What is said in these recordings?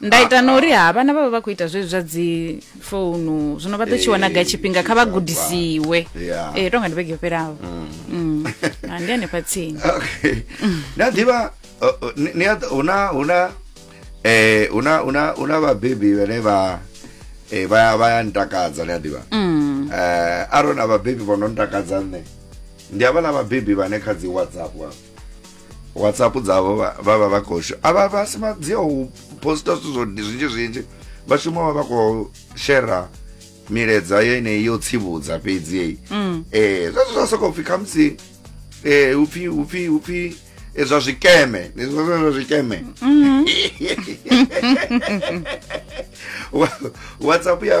nda ita na uri ha vhana vha vha vha khou ita zwezwi zwa dzi founu zwino vha ḓo tshi wana ga tshifhinga kha vha gudisiwe Yeah. ee tonga ndi vhege yo fhelaho Mm. Ah, ndi hanefha tsini okay na ḓivha uh, uh, ni- ni a ḓ- huna huna eh huna huna huna vhabebi vhane vha eh vha vha ya ntakadza ni a ḓivha Mm. eh arona vhabebi vho no ntakadza nṋe ndi havha na vhabebi vhane kha dzi whatsapp wa whatsapp dzavo vava va khou a va va si madzia u posta zwithu zwo zwinzhi zwinzhi vha shuma vha vha khou shera miledza yeneyi yo tsivhudza fhedzi yeyi um zwezwo zwa sokou pfhi khamusi um upfhi upfhi upfhi eh, zwa zwikeme zwa zwikeme mm. whatsapp ya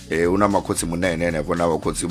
Eh una makhotsi munene henefho na vhakhotsi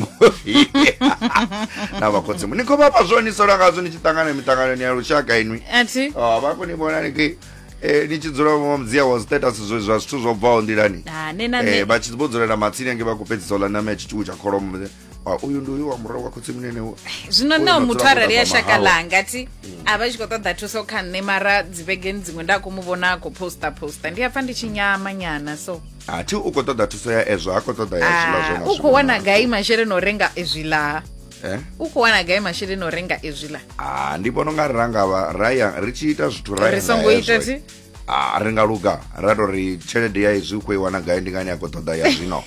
na vhakhotsi ni khou vhafha zwo ni sola ngazwo ni tshi ṱangana miṱanganoni ya lushaka inwi athi oh, vha khou ni vhona ni ki eh, ni tshi dzula vho mudzia wa status zwe zwa zwithu zwo bvaho nḓilani Ah, ne na eh, ne vha tshi vho dzulela matsini ange vha khou fhedzisa u ḽa ṋama ya tshiṱuku tsha kholomo Ah, uyu ndi uyu wa murahu wa khotsimunene u- zwino Uyu nao na muthu dzula arali ya kule na shaka mahawa. ḽanga ti a vha tshi khou ṱoḓa thuso kha nṋe mara dzivhegeni dziṅwe nda khou mu vhona a khou posta posta ndi a pfa ndi tshi nyama nyana so a thi u khou ṱoḓa thuso ya ezwo ha khou ṱoḓa ya zwiḽa Ah, zwena u khou wana gai masheleni o renga ezwiḽa Eh? u khou wana gai masheleni o renga ezwiḽa Ah, ndi vhona unga ri rangavha raya ri tshi ita zwithu ra ya ri nga songo hezwo. ita ti a ri nga luga ra tou ri tshelede ya izwi u khou i wana gai ndi ngani a khou ṱoḓa ya zwino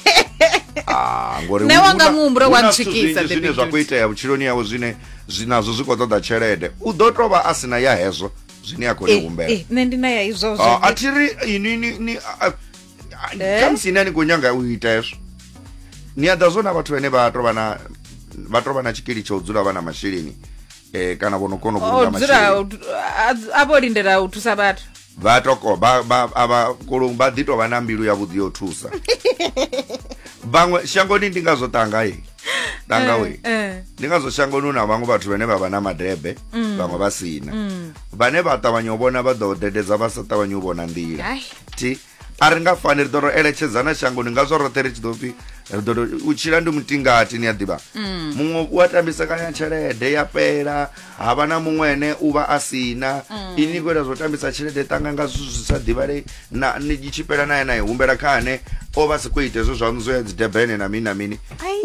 Ah, ngori Nṋe hu- wanga hu na- muhumbulo hu wa na zwithu ntswikisa, zwinzhi zwine David zwa khou Jones. itea vhutshiloni yawe zwine zwi nazwo zwi khou ṱoḓa tshelede u ḓo tou vha a si na ya hezwo zwine a khou ni humbela Eh, nṋe ndi na ya izwo Ah, a thi ri ini ni ni a- a- Eh? khamusi ine a ni khou nyanga u ita hezwo ni a ḓa zwo na vhathu vhane vha tou vha na vha tou vha na tshikili tsha u dzula vha na masheleni eh kana vho no kona u vhulunga masheleni a vho lindela u thusa vhathu vha toko ba ba aba kolong ba dito vha na mbilu ya vhuḓi yo thusa vhaṅwe shangoni ndi nga zwo tanga ye tanga we eh, eh. ndi nga zwo shangoni na vhaṅwe vhathu vhane vha vha na madebe mm. vhaṅwe vha sina mm. vhane vha ṱavhanya u vhona vha ḓo dededza vha sa ṱavhanya u vhona nḓila ti a ri nga fani ri ḓo ro eletshedzana shangoni ngazwo roṱhe ri tshi ḓo pfi ri ḓo tou- u tshila ndi mutingati ni a ḓivha Mm. muṅwe u a tambisa kanya tshelede ya fhela ha vha na muṅwe ene u vha a si na Mm. ini khou ita zwo tambisa tshelede ṱanga nga zwithu zwi sa ḓivhalei na ni i tshi fhela naye nae humbela kha ane o vha si khou ita hezwo zwaṋu zwo ya dzi debene na mini na mini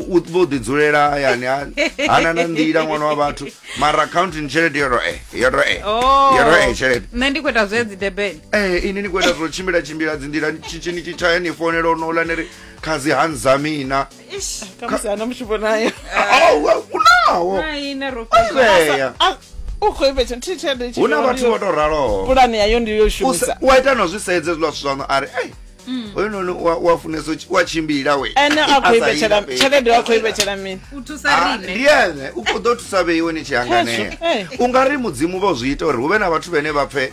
u vho ḓi dzulela hayani ha- hana na nḓila ṅwana wa vhathu mara accounting tshelede yo ro e yo ro e Oh. yo ro e tshelede nṋe ndi khou ita zwe dzi debeni ee eh, ini ni khou ita zwo tshimbila tshimbila dzi nḓila tshitshini tshi tshaya ni founela o nola ni ri khazi hanza mina khamusi ana mushupo nayo unawo hu na vhathu vho to raloho pulani yayo ndi yo shumisa u a ita no zwi sedze zwiḽa zwithu zwaṋo a ri ei Mm. oyo noni wa funesa wa tshimbila we ene a khou ivhetshela tshelede wa khou ivhetshela mini u thusa ah, rine ndi ene u khou ḓo thusa vheiwe ni tshi hanganea u nga ri mudzimu vho zwi ita uri hu vhe na vhathu vhene vha pfe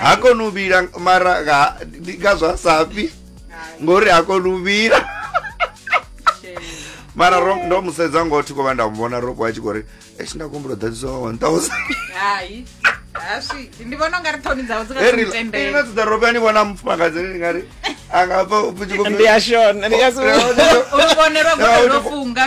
ha koni u vhila mara nga- ndi nga zwa safhi ngori ha koni u vhila mara ro- ndo mu sedza ngoho thi khou vha nda mu vhona ropo a tshi khou ri eshi nda kumbula ḓadzisa wa 1000 hai aswiki ndi vhona ungari ṱhoni dzavho dzi nga Heri- ina tendela dzidza ropo ani vhona mufumakadzi ni ngari a nga pfa u tshi khou ndi ya shona ndi ya u vhonerwa gole ro funga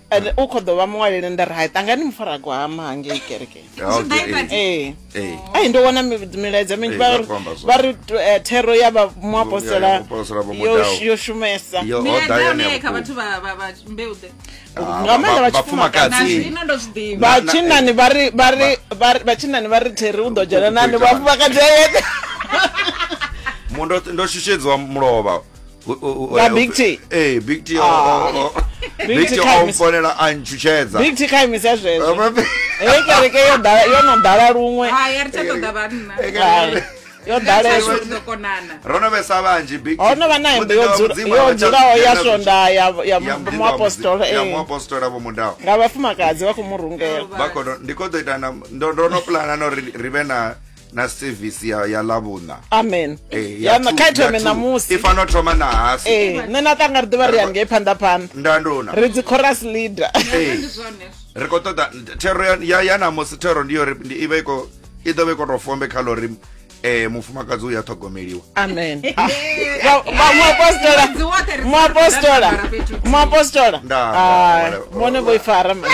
and u kho ḓo vha muṅwaleli nda ri hai ṱangani mufaragwama hangei kerekeni ee ai ndo wana milaedza minzhi vha ri eh, thero ya vha muapostola yo shumesa ah, nga maanḓa vhatshinnani vhatshinnani vha ri theri u ḓo dzhena nani vhafumakadzi ayeṱe ndo shushedziwa mulovha nga big t ee big t ah. big t o mfonela a ntshutshedza big t kha imisa zwezwo hei kereke yo ḓala yo no ḓala luṅwe ah, yo ḓalesa ro no vhesa vhanzhi big ho no vha na hembe yo dzulaho ya swonda ya ya muapostola ya eh. muapostola vho mudaho nga vhafumakadzi vha khou mu rungela vha khou ndi khou ḓo ita na ndo ndo no plana no ri vhe na na sevisi ya, ya lavhuṋa amen Eh, ya yana two- kha ithome ya two. ṋamusi i fanela u thoma na hasi ee nṋe na ṱanga ri ḓivha ri ya ngei phanḓa phanḓa ndandona ri dzi chorus leader Ee. ndi zwone ri khou ṱoḓa thero ya- ya ya namusi thero ndi yo ri ndi- i vha i khou i ḓo vha i khou tou fombe kha ḽo ri um mufumakadzi uya ṱhogomeliwa amen Ah, vha- vha- muapostola Ṅwedzi woṱhe ri muapostola dzula ro ambara fhethu huthihi. muapostola Nda- Ah, nda- vhone vho i fara mani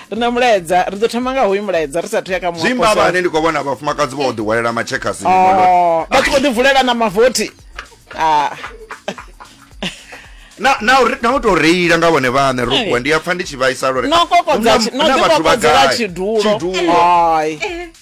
ri na mulaedza ri ḓo thoma nga hoyu mulaedza ri sa thuya kha muapostola ndi khou vhona vhafumakadzi vha o ḓi hwalela matshekasi oh, vha tshi khou ḓi vulela na mavothi ah. na na na to reila nga vhone vhane ro kwa ndi a pfa ndi tshi vhaisa lore no kokodza no kokodza tshidulo ai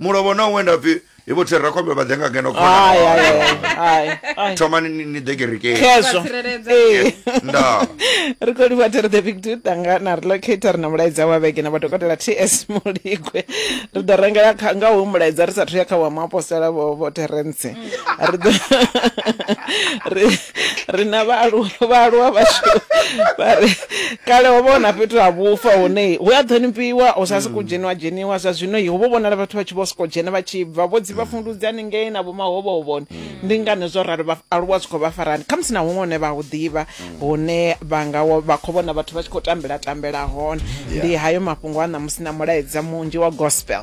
mulovha ona u wenda pfi i vho thirira khombe vha ḓe nga ngeno khona Ai, ai, ai, ai, ai. thomani ni- ni ḓe kerekeni Khezwo. Vha tsireledza. Ee. ndaa ri khou livha tere the big dude anga na relocator na mulaedza wa vhege na madokotela ts muligwe ri ḓo rengela kha- nga hu mulaedza ri sathu ya kha wa muapostola vho vho terence ri ḓo ri- ri na vhaaluwa vhaaluwa vhashu vha ri kale ho vhona fhethu ha vhufa hune hu a ṱhonifhiwa hu sa sokou dzheniwa dzheniwa zwa zwino ho vho vhonala vhathu vha tshi vho sokou dzhena vha tshi bva vho dzi vha fundudzi haningei na vhomahovhohovhoni ndi ngani zwo ralo vhaaluwa zwi khou vha farani khamusi na huṅwe hune vha hu ḓivha hune vha nga wa- vha khou vhona vhathu vha tshi khou tambela tambela hone ndi hayo mafhungo a ṋamusi na mulaedza munzhi wa gospel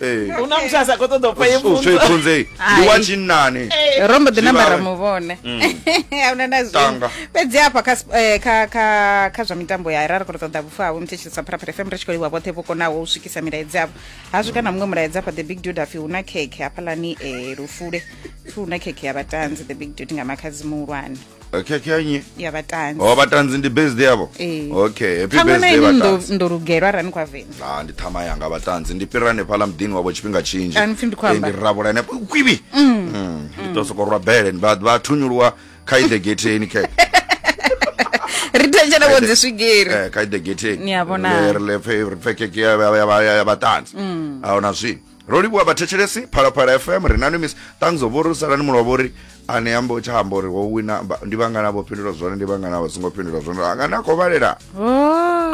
Eh. hu na muthu a sa khou ṱoḓa u pfa ye U pfunzo pfunzei ndi wa Ai. tshinnani ro mbo ḓi Zwi namba ra vhawe. mu vhona ahuna na zwi Tanga. fhedzi hafha kha sp- eh, kha kha kha zwa mitambo ya ra ri khou ṱoḓa vhufa havho mthetshelesa pharapara fm ri tshi khou livha vhoṱhe vho konaho u swikisa milaedza yavho ha swika na muṅwe mulaedza hafha the big dude apfi hu na khekhe hafhalani um lufule pfi hu na khekhe ya vhatanzi the big dude nga makhadzi muhulwane okay okay nnyi ya vhatanzi oh vhatanzi ndi birthday yavho Ee. okay happy ṱhama na birthday ini ndo- vhatanzi ndo lugelwa arali ni khou avenda Ah, ndi ṱhama yanga vhatanzi ndi fhira hanefhaḽa muḓini wavho tshifhinga tshinzhi A ni pfi ndi khou amba? Eh, ndi rabula ene kwibi Mm, ndi to soko rwa bele ndi vha- vha thunyuluwa kha ide getheni khe ri thetshela vho dzi swigiri Eh, kha ide getheni Ni a vhona. ri le pfe ri pfe keke ya- ya- ya- ya- ya vhatanzi Mm. ahuna zwini ro livhuwa vhathetshelesi phalaphala fm ri nani miss thanks of uri salani mulo wavho uri ane amba u tsha amba uri wo wina ba- ndi vhangana vho fhindula zwone ndi vhangana vha songo fhindula zwone anga ni a khou vhalela Oh.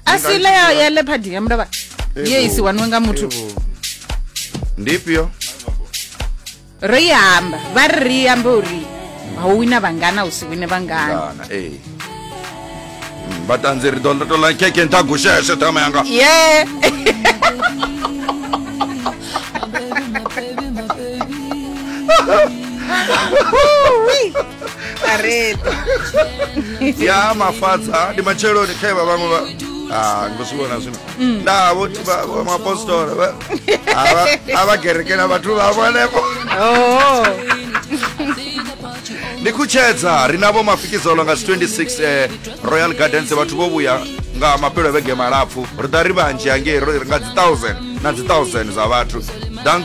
a si ile ya ya leopard ya mndavha ye i si waniwe nga muthu Evo. ndi ifhio ro i amba vha ri ri ambe uri ha u wina vhangana u si wine vhangana Ngana, ee Mm, vhatanzi ri ḓo tola keke nṱha gusheshe ṱhama yanga ye Kareta. ya mafadza ndi matsheloni khae vha vhaṅwe vha Ah, ndo zwi vhona zwino nda vhoti mapostora vha- a vha- a vha kerekela vhathu vhavho henefho Oh. ndi khutshedza ri navho mafikizolo nga 26 eh, royal gardens vhathu vho vhuya nga mapelo a vhege malapfu ri ḓa ri vhanzhi hangei ro ri nga dzi 1000 na dzi 1000 dza vhathu danko